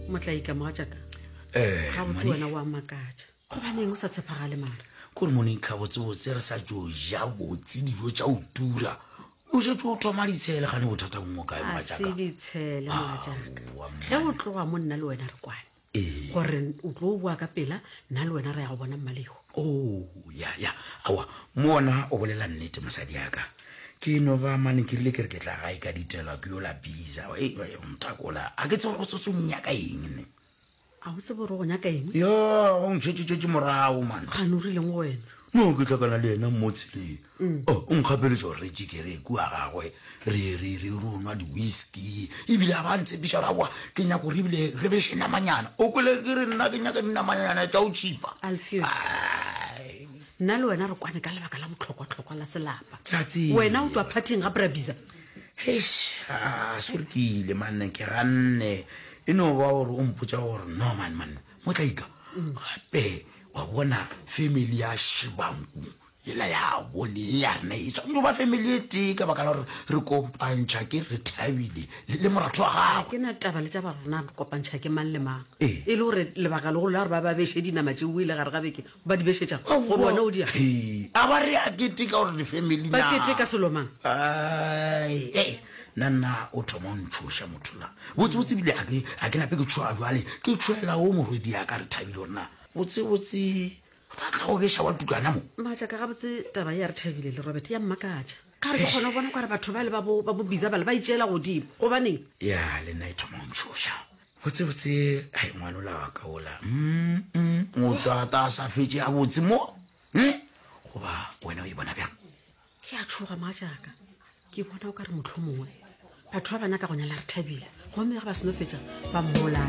motlaika mogatšaka Eh, ga botse wena wa makatša gobaneng o sa tshepagale mara kore moneng kgabotsebotse re sa jo ja botse dijo tša o tura o šetse o thoma ditshele gane bothata bongwe kae a se mogatšaka ditshele mogatšaka ge o tloga mo nna le wena re kwane Ee. gore o tlo boa ka pela nna le wena re ya go bona mmalehu o ya ya awa mona o bolela nnete mosadi yaka ke no ba mane ke rile ke re ke tla gae ka ditelwa ke yo la biza e, e, mtakola a ke tsego go sotsong nyaka eng ne a o se boro go nyaka eng yo o ntšhetšetšetše morago mane gane o rileng go wena no ke tlakana le yena mmotseleng O, o nkgapeletša gore re tšikere kua gagwe, re, re, re ro nwa di-whisky, e bile a ba a ntshepiša gore, Aowa, ke nyaka gore ebile re beše namanyana. O kwele ke re, Nna ke nyaka dinamanyana tša go tšhipa. Alfios, nna le wena re kwane ka lebaka la botlhokwa-tlhokwa la selapa. Ke a tseba. Wena o tšwa phathing ga Brabiza. Heish, a, sorry ke ile, manne, ke ganne. E no ba gore o mpotša gore, Norman, manne, motlaika, gape, wa bona, family ya Shibangu, Yela ya bone ye ya rena e tshwanetse go ba family e tee ka baka la gore re kopantšha ke re thabile le le moratho wa Ga gagwe. ke na taba le tša ba rona re kopantšha ke mang le mang Ee. e le gore lebaka legolo la gore ba ba beše dinama tše buile gare ga beke ba di bešetša go bona o dia Ee, a ba re a kete ka gore di-family ba na. kete ka selomang Ai, ei, nna nna o thoma o ntshoša motho la botsebotse bile a ke- a ke nape ke tshoa jale ke tshoela o morwedi yaka re thabile gore na botsebotse ga tla go beša wa tutlwana mo maatla ka gabotse taba ya re thabile le robert ya mmakatša ka re ke kgone go bona kware batho ba le ba bo bizabale ba itšeela godimo gobaneng ya le nna e thoma ntšhoša botsebotse ga e ngwanola wa ka ola motata a sa fetse a botse mo goba wena o e bona bjang ke a tshoga maatšaka ke bona o ka re motlho mongwe batho ba ba nyaka go nyala re thabile gomme ge ba seno fetsa ba mmolaa